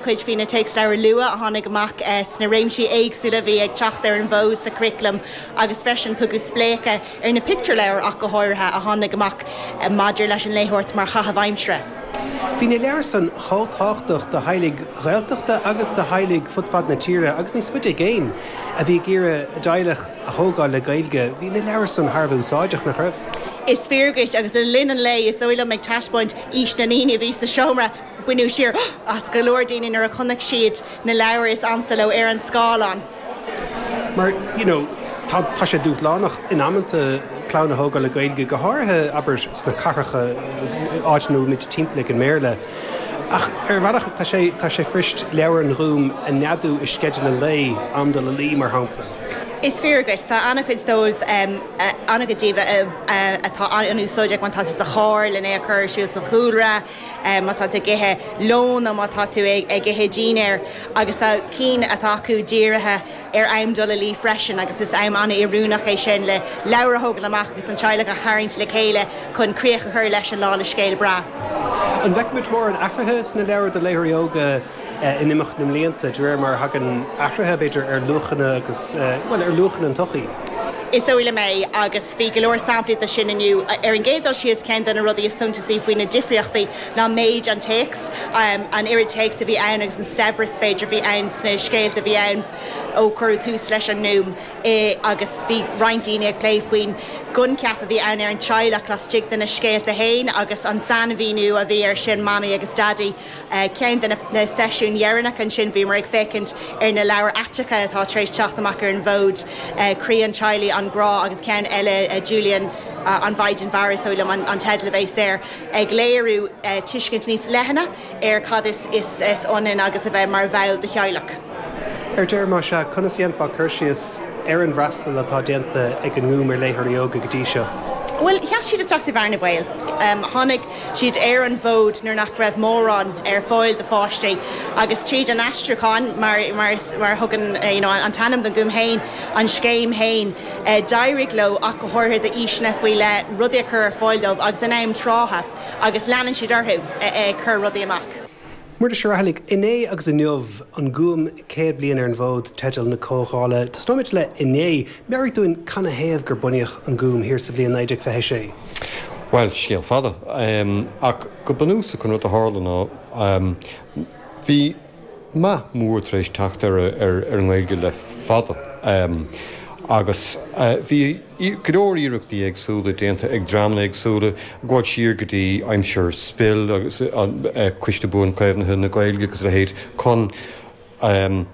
chuid faoi na téacsleabhair luath a tháinig amach sna réimsí éagsúla a bhí ag teacht ar an bhfód sa churaclam agus freisin tugadh spléachadh ar na pictiúrleabhair ach go háirithe a tháinig amach maidir leis an léitheoireacht mar chaitheamh aimsire. Bhí na leabhair san chomh tábhachtach do theaghlaigh Ghaeltachta agus do theaghlaigh fud fad na tíre agus níos faide i gcéin a bhí ag iarraidh a dteaghlach a thógáil le Gaeilge, bhí na leabhair san thar a bheith úsáideach, nach raibh? Is fíor duit agus le linn an lae, is dóigh liom ag taispeáint aois na ndaoine a bhí sa seomra, Baineadh siar as go leor daoine nuair a chonaic siad na leabhair is ansa leo ar an scáileán. Mar, you know, tá, tá sé dúshlánach in amanta clann a thógáil le Gaeilge, go háirithe, abair, sna cathracha, áiteanna a bhfuil muid timpeallaithe ag an mBéarla. Ach, ar bhealach, tá sé, tá sé fuirist leabhair an Ghúim a neadú i sceideal an lae, am dul a luí, mar shampla. Is fíor dhuit. Tá ana-chuid dóibh, ana-chuid díobh, tá siad úsáideach má táthar sa charr len é a chur ar siúl sa chúlra. má tá tú ag ithe lóin nó má tá tú ag ithe dínnéir agus tá cinn acu dírithe ar am dul a luí freisin agus is am an-oiriúnach é sin le leabhar a thógáil amach agus an teaghlach a tharraingt le chéile chun críoch a chur leis an lá le scéal breá. An bhfeicfimid mórán athruithe sna leabhair do léitheoirí óga in imeacht na mblianta, de réir mar a thagann athruithe, b'fhéidir, ar luachanna agus, bhuel, ar luachanna na sochaí? Is dóigh liom é, agus Bhí go leor samplaí de sin inniu. Ar an gcéad dul síos, ceann de na rudaí is suntasaí faoi na difríochtaí ná méid an téacs, an oiread téacs a bhí ann agus an saibhreas, b'fhéidir, a bhí ann sna scéalta a bhí ann ó cuireadh tús leis an nGúm. Agus bhí roinnt daoine ag plé faoin gcoincheap a bhí ann ar an teaghlach laistigh de na scéalta féin agus an sainmhíniú a bhí air sin, Mamaí agus Daidí. Ceann de na seisiúin dheireanacha ansin, bhíomar ag féachaint ar na leabhair aiteacha atá tar éis teacht amach ar an bhfód, Croí an Teaghlaigh, An Grá, agus ceann eile, Julian, An Mhaighdean Mhara, is dóigh liom an teideal a bhéas air, ag léiriú tuiscint níos leithne ar cad is ionann agus a bheith mar bhall de theaghlach. Ar deireadh, más ea, conas a dhéanfá cur síos ar an bhfreastal atá déanta ag an nGúm ar léitheoirí óga go dtí seo? Bhuel, sheas siad isteach sa bhearna bhaoil. Tháinig siad ar an bhfód nuair nach raibh mórán ar fáil do pháistí agus tríd an aistriúchán, mar a thugann an t-ainm don Gúm féin, an scéim féin, d'éirigh leo ach go háirithe d'aoiseanna faoi leith rudaí a chur ar fáil dóibh agus in am trátha agus leanann siad orthu ag cur rudaí amach. Muiris Ó Raghallaigh, 'Inné agus Inniu, An Gúm 100 bliain ar an bhfód' teideal na comhdhála. Tosnóimid le 'Inné'. Meabhraigh dúinn canathaobh gur bunaíodh An Gúm thiar sa bhliain 1926? Bhuel, scéal fada. Ach go bunúsach an rud a tharla ná bhí meath mór tar éis teacht ar an nGaeilge le fada agus bhí, go leor iarrachtaí éagsúla déanta ag dreamanna éagsúla, ag gabháil siar go dtí aimsir SPIL agus Cumann Buanchoimeádta na Gaeilge agus a leithéid, chun an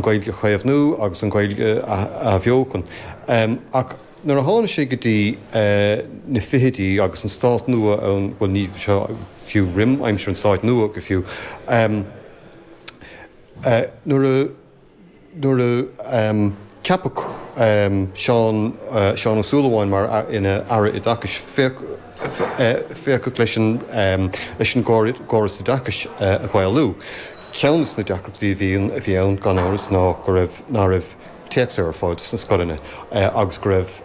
Ghaeilge a chaomhnú agus an Ghaeilge a athbheochan. Ach nuair a tháinig sé go dtí na fichidí agus an Stát nua ann, bhuel ní fiú roim aimsir an Stáit nua go fiú, nuair a. nuair a ceapadh Seán, Seán Ó Súilleabháin mar, ina Aire Oideachais, féachadh leis an, leis an gcóras oideachais a Ghaelú. Ceann des na deacrachtaí a bhí, a bhí ann, gan amhras, ná go raibh, ná raibh téacsanna ar fáil do sna scoileanna agus go raibh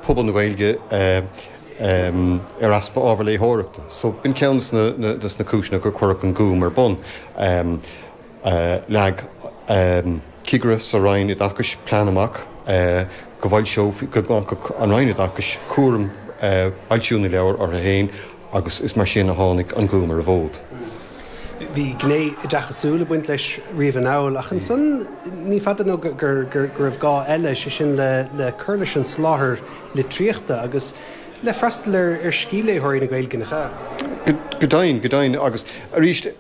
pobal na Gaeilge ar easpa ábhar léitheoireachta. So, b'in ceann des na, des na cúiseanna gur cuireadh an Gúm ar bun. Leag cigire sa Roinn Oideachais plean amach go bhfoilseofaí, go nglacfadh an Roinn Oideachais cúram fhoilsiú na leabhar orthu féin agus is mar sin a tháinig An Gúm ar an bhfód. Bhí gné oideachasúil ag baint leis riamh anall ach ansan ní fada nó go raibh gá eile, sé sin le cur leis an soláthar litríochta agus le freastal ar scíthléitheoirí na Gaeilge. Go deimhin, go deimhin agus arís.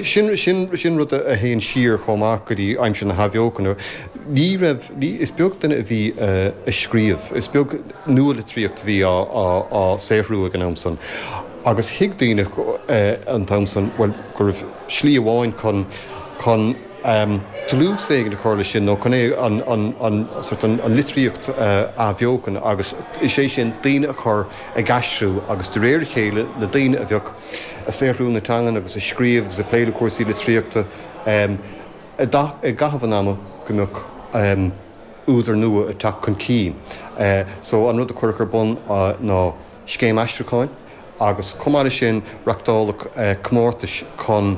Sin rud a théann siar chomh maith go dtí aimsir na hAthbheochana. Ní raibh, is beag duine a bhí ag scríobh, is beag nua-litríocht a bhí á saothrú ag an am san agus thuig daoine an t-am san, bhuel, go raibh slí amháin chun dlús éigin a chur leis sin nó chun é, an litríocht a athbheochan agus is é sin daoine a chur ag aistriú agus de réir a chéile na daoine a bheadh ag saothrú na teangan agus ag scríobh agus ag plé le cúrsaí litríochta i gcaitheamh an ama go mbeadh údair nua ag teacht chun cinn. So an rud a cuireadh ar bun ná scéim aistriúcháin agus chomh maith leis sin reachtáladh comórtais chun.